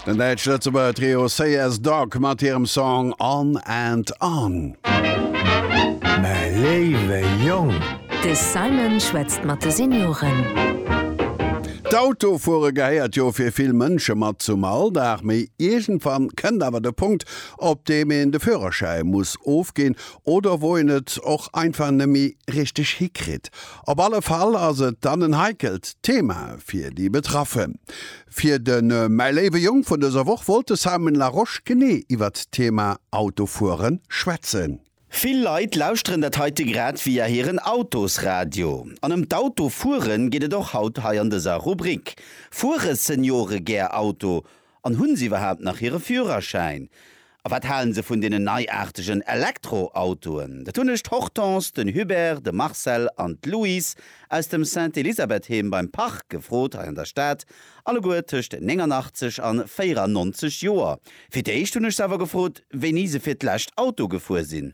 Den däitsch-lëtzebuerger Trio Say As Dog mat hirem Song On and On. Mäi léiwe Jong! De Simon schwätzt mat de Senioren. D'Autofuere gehéiert jo fir vill Mënsche mat zum Alldag. Mee iergendwann kënnt awer de Punkt, op deem een de Fürerschäi muss ofginn oder wou een et och einfach nëmme méi richteg hikritt. Op alle Fall ass et dann en heikelt Thema fir déi Betraffen. Fir de Mäi léiwe Jong vun dëser Woch wollt de Simon Larosche genee iwwert d'Thema Autofuere schwätzen. Vill Leit lauschteren dat heite grad via hiren Autosradio. An ëm d'Autofuere geet et och haut hei an dëser Rubrik. Fuere Seniore gär Auto? An hunn se iwwerhaapt nach hire Führerschäin? A wat halen se vun deenen neiaartegen Elektroautoen? Dat hunn ech d'Hortense, den Hubert, de Marcel an d'Louise aus dem Sainte-Elisabeth-Heem beim Parc gefrot hei an der Stad, alleguer tëscht 89 an 94 Joer. Fir d'éischt hunn ech se awer gefrot, wéini se fir d'lescht Auto gefuer sinn.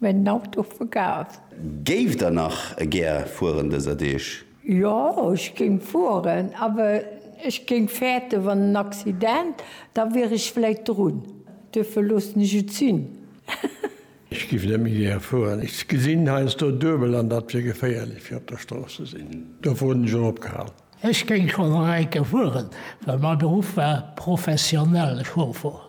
Mä den Auto verkaaft. Géift der nach gär fueren dëser Deeg? Jo, ech géing fueren, awer ech géing fäerten, wann en Accident, da wier ech vläit drun. Duerfir loossen ech et sinn. Ech géif net méi gär fueren. Ech gesinn heiansdo duebel an datt wier geféierlech fir op der Strooss ze sinn. Dofir hunn ech och opgehal. Ech géing schonn nach eng Kéier fueren, well mäi Beruff war professionell Chauffer.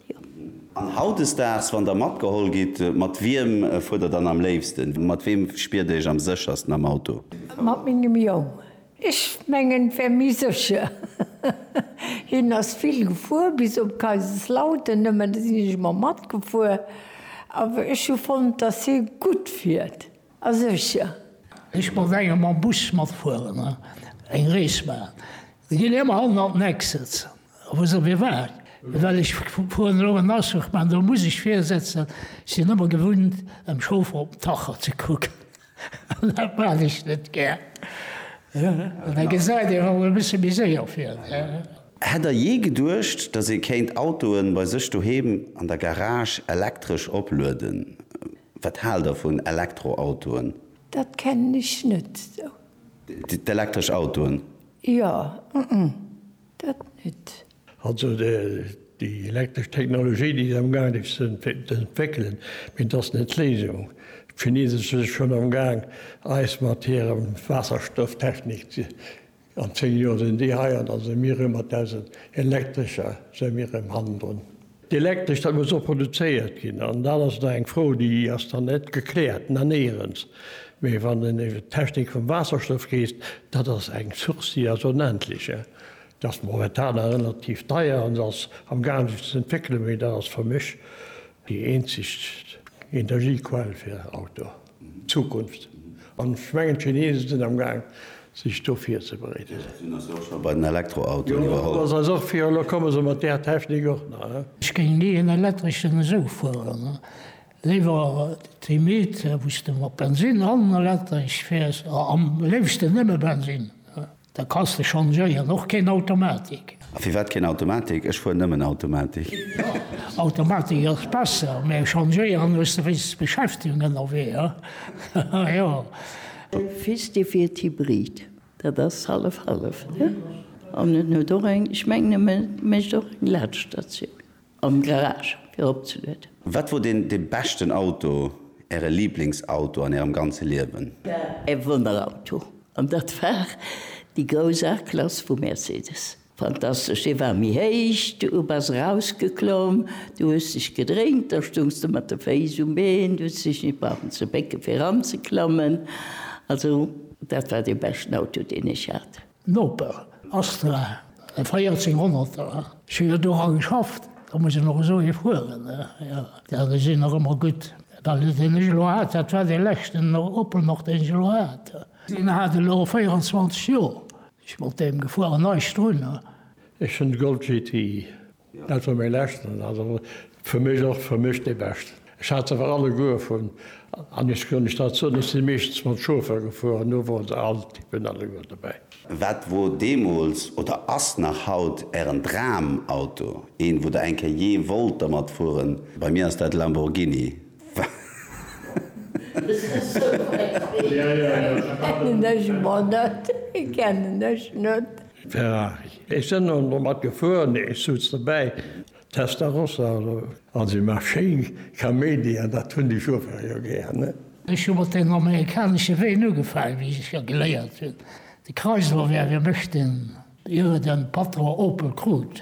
An hautdesdaags, wann der matgeholl gitt, mat wiem fuert der dann am léifsten? Mat weem spiert der iech am séchersten am Auto? Mat mengem Jong. Ech mengen, et wär méi sécher. Hien ass vill gefuer, bis op Kaiserslautern nëmmen, do sinn ech ëmmer matgefuer. Awer ech hu fonnt, datt hie gutt fiert a sécher. Ech wollt enge mam Bus matfueren, eng Rees maachen. Et ginn ëmmer 100 Nexits, wou se mir waren, well ech fueren elo en Aschach, mä do muss ech virsetzen, ech sinn ëmmer gewunnt dem Chauffer op den Tacho ze kucken an dat maan ech net gär an da gesäit een emol e bësse méi séier vir. Hätt der jee geduecht, dass ee kéint Autoe bei sech doheem an der Garage elektresch oplueden? Wat haalt der vun Elektroautoen? Dat kennen ech net esou. D'elektresch Autoen? Jo, dat nüt. Also déi elektresch Technologie, déi si amgaangen déi ze entwéckelen, mee dass net d'Léisung. D'Chinese si schonn amgaang eis mat hirem Waasserstofftechnik ze, an 10 Joer sinn déi hei an da si mir erëm mat eisen elektrescher si mir erëm hannendrun. D'Elektresch da muss och produzéiert ginn an dann ass et nach eng Fro, déi ass dann net gekläert nanéierens. Mee wann een iwwert d'Technik vum Waasserstoff reest, dat ass eng Source, déi ass onendlech. Se ass momentan nach relativ deier an se ass am gaangen sech ze entwéckelen, mee dat ass fir mech déi eenzeg Energiequell fir Auto. Zukunft. An ech mengen, d'Chinesen sinn am Gaang, sech do virzebereeden. Déi sinn eis jo och scho bei den Elektroautoen iwwerholl. Jo, dat ass eis och virgehalen. Elo komme se mat där Technik och nach. Ech géing ni en elektreschen esou fueren. Léiwer d'Hybride, wou s de mat Bensinn an elektresch fäers, am léifsten nëmme Bensinn. Da kanns de changéieren, och keen Automatik. A firwat keen Automatik? Ech fueren nëmmen Automatik. Automatik ass besser, mä changéieren hues de wéinst Beschäftigung ënnerwee, ha jo. De Fils de wiert Hybrid, dat ass hallef hallef, ne? An en huet och eng, ech mengen e mécht och eng Laadstatioun. Am Garage fir opzelueden. Wat wor den den beschten Auto, äre Lieblingsauto an ärem ganze Liewen? E Wonnerauto, an dat war déi grouss A-Klass vu Mercedes. Fantastesch, dee war méi héich, du bass erausgeklomm, du hues dech gedréint, da stoungs de mat de Féiss um Been, du hues dech net brauchen ze bécke fir eranzeklammen. Also dat war dee beschten Auto, deen ech hat. Noper, Astra, e 14 honnerter, ech hu jo do rang geschafft, da muss een och esou ee fueren, jo, dat ass een nach ëmmer gutt, well deen ech elo hat, dat war dee leschten Opel nach deen ech elo hat, deen hat elo 24 Joer, ech mat deem gefueren, eischt drun. Ech hunn de Golf GTI, Net vum méi leschten, also fir mech och fir mech dee beschten. Ech hat se awer alleguer vun an ech kann Iech dat soen, ech si meeschtens mat Chauffer gefueren, do wor se all Typen alleguer dobäi. Wat wor deemools oder ass nach haut Ären Dramauto, een wou Der eng Kéier jee wollt dermat fueren? Bei mir ass dat Lamborghini. Kennen ech mer net, kennen ech net. Ferrari. Ech sen dann domat gefuer, nee ech souz dobäi, Testarossa oder? An se maach schéin Kaméidi an dat hun ech uewer jo gär, ne? Ech hu mat deenen amerikaneschen Ween ugefaang, wéi ech jo geléiert hun. De Chrysler wär fir mech den, ier e den Patron Opel krut.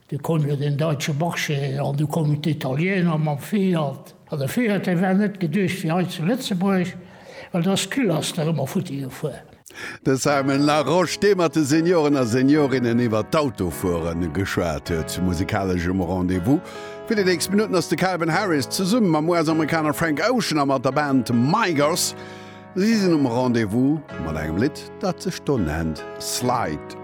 Du koum jo den Deutsche Marché an du koumen d'Italiener mam Fiat. An de Fiat, dee war net geduecht fir hei zu Lëtzebuerg, well do ass d'Kühlaster ëmmer futti gefuer. De Simon Larosche, dee mat de Senioren a Seniorinnen iwwer d'Autofuere geschwat huet. Zu musikaleschem Rendez-vous fir déi nächst Minutten ass de Calvin Harris zesumme mam US-Amerikaner Frank Ocean a mat der Band Migos Si sinn um Rendez-vous mat engem Lidd, dat sech do nennt Slide.